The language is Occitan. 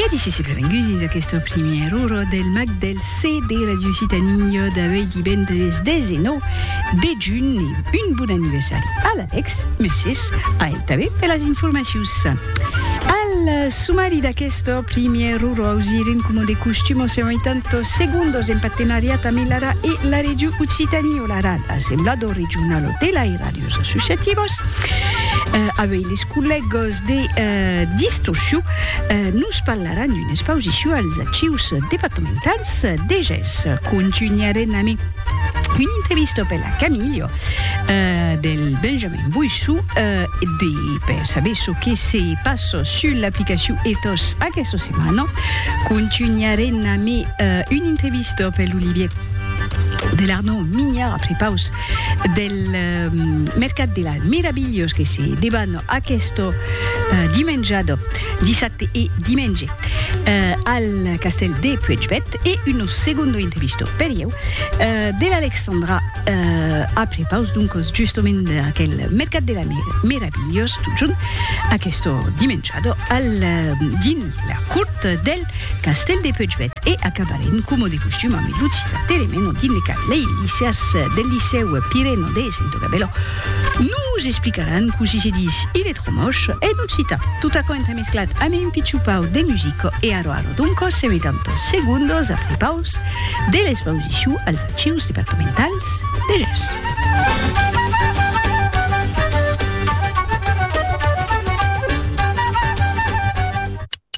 E acici se prevengusis aquesta primièra ora del mag del CD Radio Occitanie d'avui divendres 19 de junh e un bon anniversari a l'Alex, mercés a el tanben per las informacions. Al sumari d'aquesta primièra ora ausirem coma de costum en 180 segondos en partenariat amb l'ARA e la Radio Occitanie, l'ARA, l'Assemblador Regional de l'Airàdios Associativos, avei les collègas, De Distorsio nos parlaràn d'una expausicion als Archius departamentals de Gèrs. Contunharem amé una entrevista per la Camilio del Benjamin Boissou de per saber çò que se passa sul l'aplicacion Ethos aquesta setmana. Contunharem amé una entrevista per l'Olivier de l'Arnaud Mignard a prepaus del mercat de la mirabilhós que se debano aquesto dimenjado dissabte e dimenge al castèl de Puègpèth e uno segundo intrevisto per ieu de l'Alexandra a prepaus doncos justament d'aquel mercat de la mirabilhós totjorn aquesto dimenjado al dins la cort del Castèl de Puigvèt e acabarem coma de costum amb lo citat Teremeno dins le cap lei licèrs del licèu Pireno de Sento Gabelò. Nos explicaràn cossí se ditz il est trop moche en occitan. Tot aquò entremesclat amé un pichon pau de musica e arò arò doncos se metan tos segundos a prepaus de l'expausicion als Archius Departamentals de Gers.